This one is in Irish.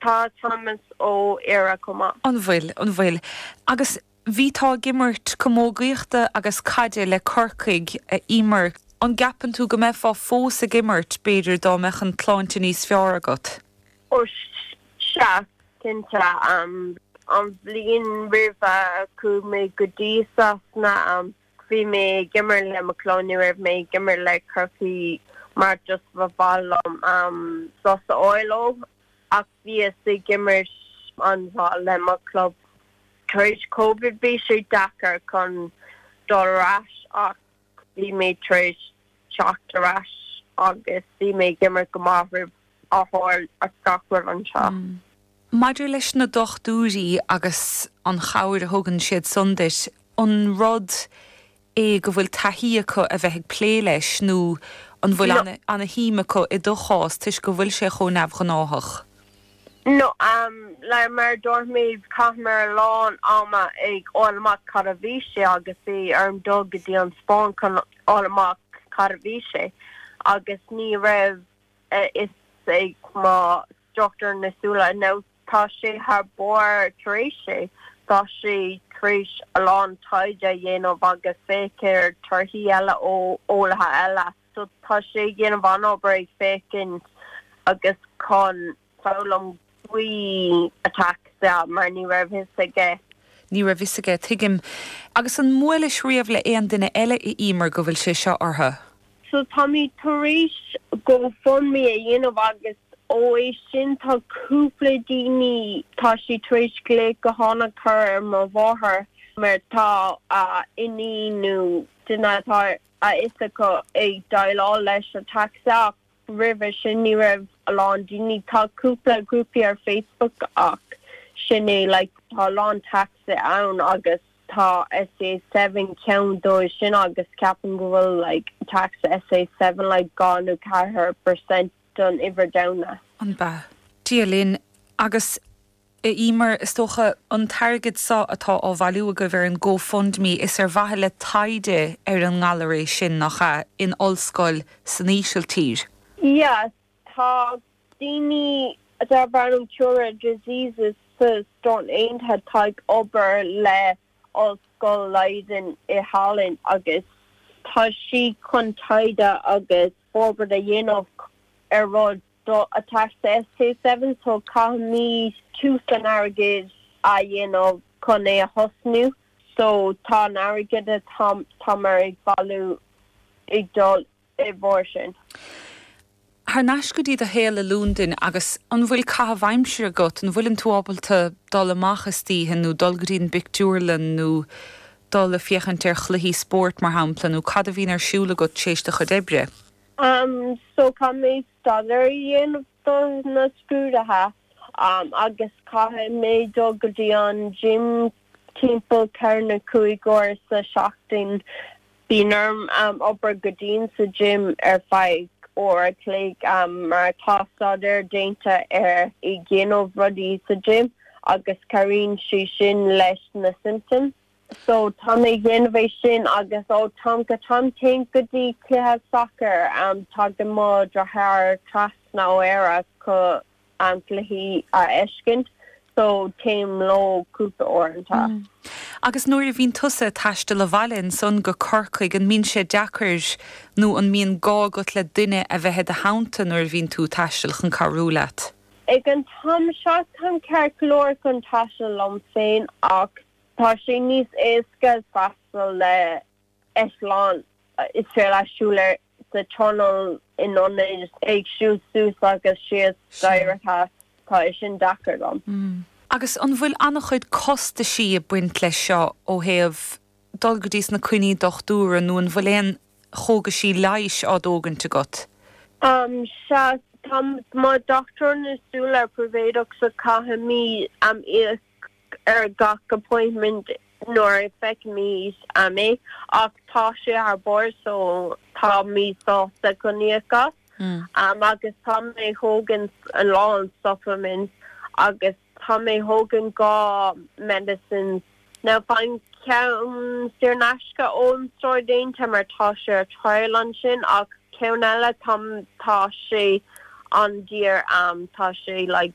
Tá Thomas ó Éire chomh maith. An bhfuil, an bhfuil. Agus bhí tú ag imirt camógaíochta agus caide le Corcaigh, a Eimear. An gceapann tú go mbeifeá fós ag imirt, b'fhéidir, dá mbeadh an tsláinte níos fearr agat? Ó sea, cinnte. An bhliain roimhe, chuaigh mé go dtí Sasana. Bhí mé ag imirt le mo chlub, ní raibh mé ag imirt le Corcaigh mar just ba mhaith liom am sos a fháil ó. Ach bhíos ag imirt an-mhaith le mo chlub. Tar éis Covid bhí sé deacair chun dul ar ais ach bhí mé tar éis teacht ar ais agus bhí mé ag imirt go maith roimh á fháil as gach rud anseo. Maidir leis na dochtúirí agus an chabhair a thugann siad san duit, an rud é go bhfuil taithí acu a bheith ag plé leis nó an bhfuil No. an-shuim acu i do chás toisc go bhfuil sé chomh neamhghnáthach? No. Like, mar a dúirt mé, chaitheamar a lán ama ag fháil amach cad a bhí sé agus bhí orm dul go dtí an Spáinn chun fháil amach cad a bhí sé agus ní raibh, a fhios ag mo dhochtúir na súile nó tá sé thar barr tar éis é. Tá sé tar éis a lán taighde a dhéanamh agus féach ar torthaí eile ó eolaithe eile. So tá sé ag déanamh an-obair ag féachaint agus chun. foghlaim faoi ataxia mar ní raibh fhios aige. Ní raibh fhios aige, tuigim. Agus an mbuailis riamh le aon duine eile a Emer go bhfuil sé seo orthu? So táimid tar éis GoFundMe a dhéanamh agus ó é sin tá cúpla daoine tá siad tar éis glaoch gutháin a chur ar mo mháthair mar tá a iníon nó duine atá a fhios acu ag déileáil leis an ataxia. roimhe sin ní raibh a lán daoine, tá cúpla grúpaí ar Facebook ach sin é like tá a lán ataxia ann agus tá SCA seven ceann dóibh sin agus ceapaim go bhfuil like ataxia SCA seven like dhá nó ceathair per cent don uimhir domhanda. An mbeidh? Dia linn agus. Emer, Is dócha an t-airgead so atá á bhailiú agaibh ar an GoFundMe is ar mhaithe le taighde ar an ngalar é sin, nach ea, in ollscoil san Ísiltír? Yes, tá daoine darb ainm Cure Rare Diseases sa Stáit Aontaithe atá ag obair le Ollscoil Leiden i Holland agus tá sí chun taighde agus forbairt a dhéanamh ar rud do attack the SK7 so caithfimid tiús an airgid a dhéanamh chun é a thosnú so tá an airgead atá táimid ag bailiú ag dul i gcomhair sin. Thar n-ais go dtí do shaol i Londain agus an bhfuil caitheamh aimsire agat? An bhfuileann tú ábalta dul amach istoíche nó dul go dtí an bpictiúrlann nó dul a féachaint ar chluichí spóirt mar shampla nó cad a bhíonn ar siúl agat t'éis do chuid oibre? Um so caithfidh mé staidéar a dhéanamh do na scrúdaithe um agus caithfidh mé dul go dtí an gym timpeall ceithre nó cúig uair sa tseachtain. Bíonn orm um obair go dian sa gym ar feadh uair a chloig um mar tá staidéar déanta ar dhéanamh rudaí sa gym agus cabhraíonn sé sin leis na symptoms. So tá mé ag déanamh é sin agus ó am go ham téim go dtí cluiche sacair am tagann mo dheartháir trasna ó Éire chun am cluichí a fheiscint so téim leo cúpla uaireanta. Mm. Agus nuair a bhíonn tusa a' taisteal abhaile ansan go Corcaigh an mbíonn sé deacair nó an mbíonn gá agat le duine a bheith i do theannta nuair a bhíonn tú a' taisteal chun cabhrú leat? Ag an t-am seo táim ceart go leor chun taisteal liom féin ach Tá sé níos éasca ag taisteal le eitleán is féidir leat siúl ar an tollán in ionaid ag siúl suas agus síos staighre sea. Tá é sin deacair dom. Agus an bhfuil an-chuid costaisí ag baint leis seo ó thaobh dul go dtí sna coinní dochtúra nó an bhfuil aon chógaisí leighis á dtógaint agat? Sea, tá mo dhochtúir na súl príobháideach so caithfimid am íoc. ar gach appointment nuair a fheicimid é ach tá sé thar barr so táimid sásta chun íoc as agus tá mé ag thógaint a lán supplements agus tá mé ag thógaint dhá medicines now faighim ceann saor in aisce ón staidéar déanta mar tá sé ar trial ansin ach ceann eile tá sé an-daor tá sé like